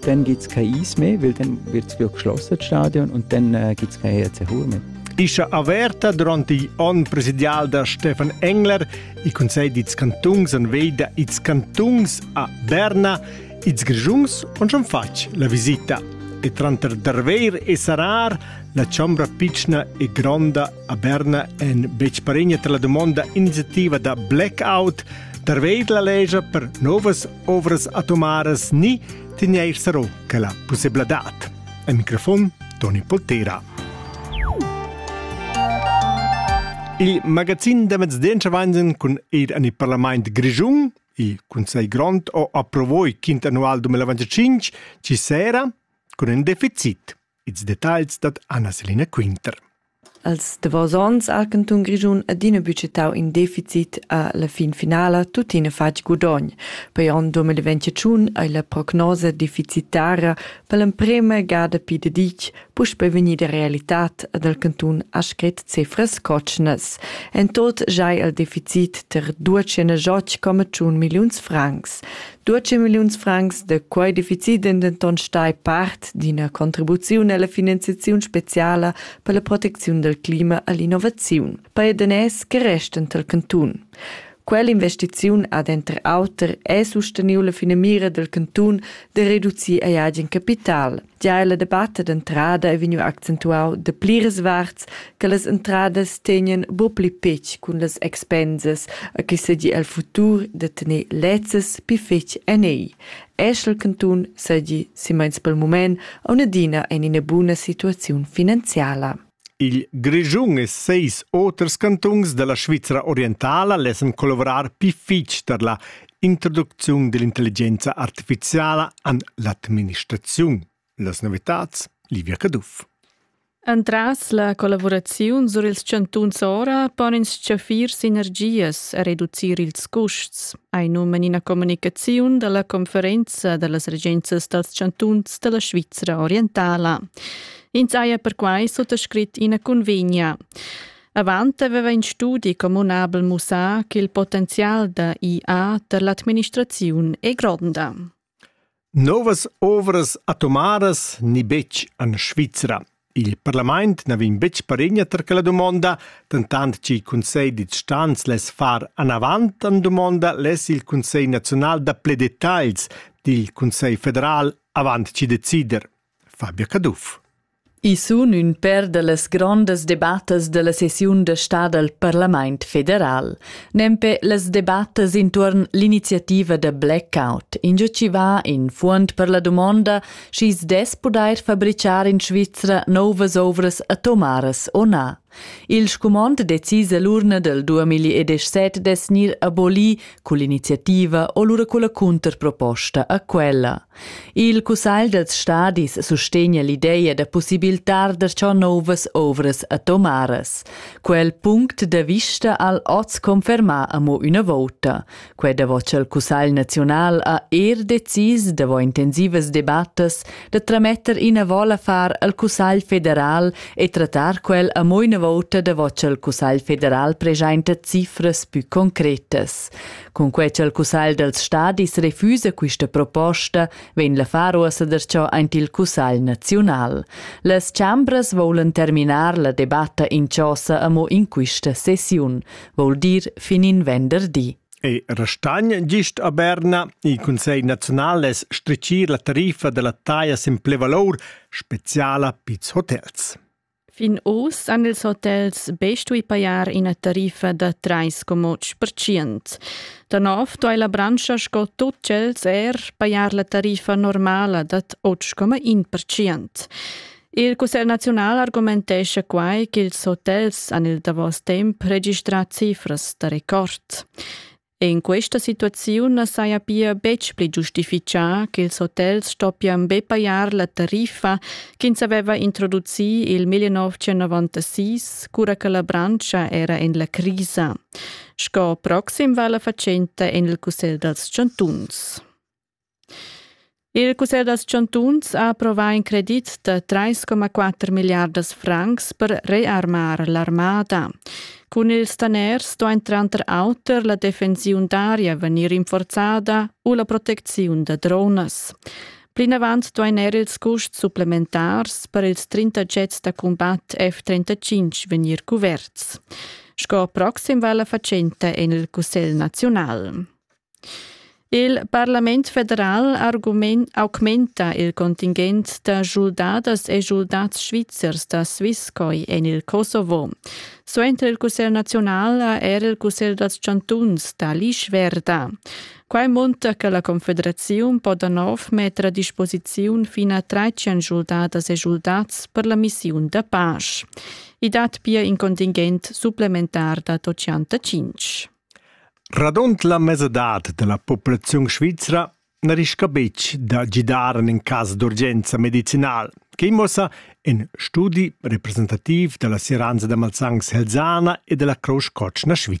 Dann geht's kein Eis mehr, weil dann wird es wirklich geschlossen, das Stadion, und dann äh, gibt es kein HRC mehr. Ischa averta durant igl onn presidial da Stefan Engler i consegl dits cantungs an veida its cantungs a Berna, its grigiungs on schon fatg la visita. E tranter Darveir e Sarar, la chombra piccina e gronda a Berna en becparegna tra la domonda iniziativa da blackout, Darveir la legia per novas ovras atomaras ni tegneir sarò che la pussebladad. Al microfon Toni Poltera. Il magazin da mezdencha vanzen cun eir an il parlament grischun, il Consiglio Grond ho approvò il quint annual 2025 ci sera cun ün deficit. Ils detagls dat Anna Selina Quinter. Els davos onns ha il cantun Grischun adina budgetau in deficit a la fin finala tuttina fatg gudogn. Per onn 2021 ei la prognosa deficitara per l'emprema gada pi deditg puspe vegnida realitad ad el cantun ha scret cifras cotschnas. En tot jai il deficit ter 218,1 milliuns francs. 12 milliuns francs de quei deficit ein denton stai part d'ina contribuziun alla finanziaziun speciala per la protecziun del clima all'innovaziun per daners che resten tal cantun. Quell'investiziun ad enter auter è susteniu la finamira del cantun de reducir ei agen capital. Gia la debatta d'entrada è vegniu accentuau de pliras varts che las entradas tegnan buc pli petg cun las expensas a che segi el futur de tener lezzas pi fetg en ei. Eschel cantun segi, si meins pel mument, aunadina en ina buna situaziun finanziala. Il Grischun e seis oters cantuns da la Svizra orientala lessan collavourar pii fich tar la introducziun dell'intelligenza artificiala an l'administraziun. Las novitats, Livia Caduff. Entras la collavuraziun sur ils chantuns ora pon ins chaffir sinergias e reducir ils custs, ei num en ina communicaziun dalla conferenza dallas regenzas dals chantuns dalla Svizra orientala. Ins haja perquai suttascrit ina cunvegna. Avant aveva in studi communabel mussà ch'il potenzial da IA per l'administraziun è gronda. Novas ovras atomaras ni betg en Svizra. Il parlament na vegn betg paregna tar quella dumonda, dentant ch'il Cunsegl d'instanz less far anavant en dumonda less il Cunsegl naziunal da pli detagls dil Cunsegl federal avant chi decider. Fabia Caduff. I sun ün pêr da las grondas debattas da la sessiun da stà dal Parlamaint federal. Nempe las debattas intuorn l'iniziativa da blackout, ingio chi va in fuond per la dumonda schi's dess pudair fabrichar in Svizra nouvas ouvras atomaras o na. Il scumond decis all'urna del 2017 dess gnir aboli cull'iniziativa o lura culla cunterproposta a quella. Il Cussagl dels stadis sustegna l'ideia da possibiltar da ciò novas ovras atomaras. Quel punct da vista al oz confermà amo üna vouta. Quei davos il Cussegl naziunal ha er decis davos intensivas debattas da trametter ina vola far al Cussegl federal e trattar quel a mo ina volta davos il Cussegl federal presenta cifras più concretas. Con quei il Cussegl dels Stadis refusa questa proposta, vegn la far uossa derciò aint il Cussegl naziunal. Las chambras volen terminar la debatta in chosa amo in quista sessiun. vol dir fin in venderdi. E restagn gist a Berna il Consiglio nazional es stricir la tariffa della taglia sin plevalor speciala pizs hotels. Fin oz han ils hotels be stui pajar ina tariffa da 3,5%. Da nov doi la branscha sco tut tschels er pajar la tariffa normala da 8,1%. Il cussegl naziunal argumentescha quai ch'ils hotels han il davos temp registrà cifras da record. In questa situaziun na saja pia betg pli giustifichà ch'ils hotels stoppian be pajar la tariffa ch'ins aveva introducì il 1996, cura che la branscha era en la crisa. Sco proxim va la fatschenta en il Cussegl dals chantuns. Il cussegl da chantuns ha approvà in credit da 3,4 milliardas francs per rearmar l'armada. Cun ils daners stoin tranter auter la defensiun d'aria vegnir rinforzada u la protecziun da dronas. Plinavant duain er ils custs supplementars per ils 30 jets da cumbat F-35 vegnir cuverts. Sco proxim va la fatschenta en il Cussegl naziunal. Il parlament federal argument augmenta il contingent da schuldadas e schuldads svizzers da Swisscoi en il Kosovo. Suenter il Cussegl nazional ha er il Cussegl dals chantuns da l'Ischwerda. Quai munta che la Confederaziun po da nov metter a disposiziun fin a 13 schuldadas e schuldats per la missiun da pace. I dat pia in contingent supplementar da 85. Radund la mesadad dalla populaziun svizra na rischa betg da gidar en in cas d'urgenza medicinal, quei muossa in studi representativ dalla Seranza da Malsans Helsana e dalla Crousch Cotschna Svizra.